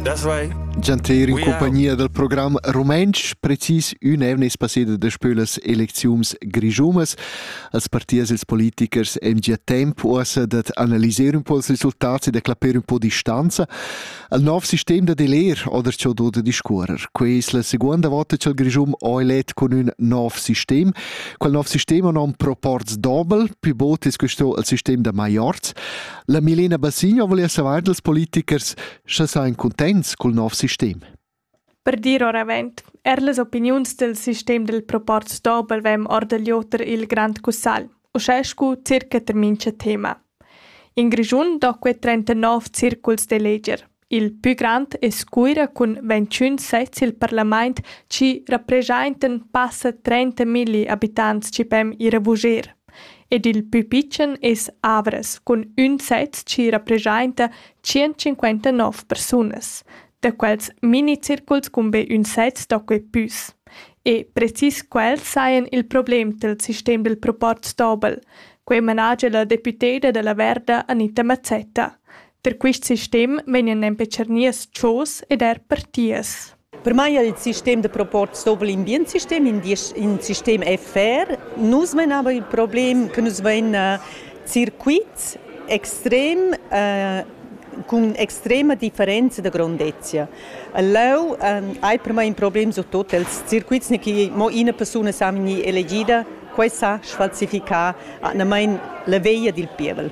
Das vai. Gianter in compagnia dal program rumantsch, precis ün evnes passeda da spölas elecziums grischumas, als partiers ils politikers em gia temp uossa dat analyser un po els risultats e da clapper un po distanza al nov sistem da deler oder ciò do da discuorer. Quei es la seconda volta ch'el Grischum ho elet con ün nov sistem. Quel nov sistem ha nom proports dobel, più bot es questo al sistem da Maiorz. La Milena Bassigno vul esser aint als politichers, scha sain cuntents cul nov sistem. Per dir oravant, er las opiniuns del sistem del proport Dobel vem or del Joter il Grand Cussal, uschè scu circa termin ce tema. In Grischun do que 39 circuls de leger. Il pü grand es Cuira cun ventschün sezs i'l parlamaint chi rapreschaintan passa trenta milli abitants chi ven ir a vuger. Ed il pü pitschen es Avras cun ün sez chi rapreschainta tschientschinquantanov persunas. Da quels minicirculs cun be ün sez sto quai püs. E precis quels sajan il problem dal sistem dal proporz dobel. Quai managia la deputeda da la Verda Anita Mazzetta. Per quist sistem vegnan nempe tschernias chos ed eir partias. Per mai il sistem da proporz dovr'l in bien sistem, in diesch, in sistem FR. Nus menavan il problem che nus vain circuits extrem cun extrema differenza da grondezia. Leu hai per mai in problem su tot els circuits ne che mo ina persuna sa vegnir elegida, quei sa sfalsificar atgnamain la veglia dil pievel.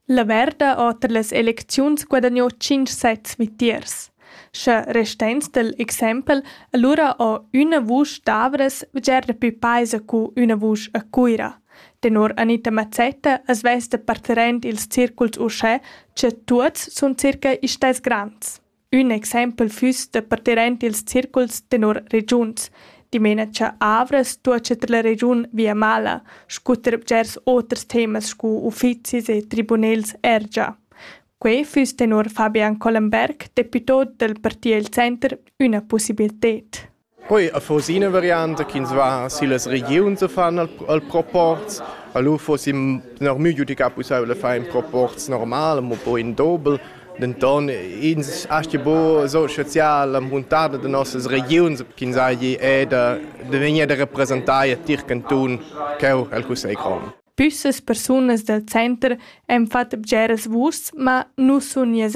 La merda oter las elecziuns guadagnò tschinch sets vitiers. Scha restains dal exempel, alura ho üna vusch d'Avras bger dapü paisa cu üna vusch a Cuira. Tenor Anita Mazzetta as vess da parterent ils circuls uschè cha tuots sun circa istess grands. Ün exempel füss da parter aint ils circuls tenor regiuns. Dimena-cha Avras tuocha tra la regiun Viamala scu ter bgers oters temas scu uffizis e tribunels ergia. Quai füss tenor Fabian Collenberg, deputò dal parti El Center, üna pussibilted. Poi affons ina varianta ch'ins va sillas regiuns a fan al, al proporz. A lu fossi normü giudicà pussaivel da far in proporz normal, mo poi in dobel. Denton ins aschi buca so spezial la muntada da nossas regiuns ch'ins hagi è da, da vegnir da representar a tier cantun cheu el cussegl grond. Püssas persunas dal center han fatg bgeras vuschs, ma nus sun nies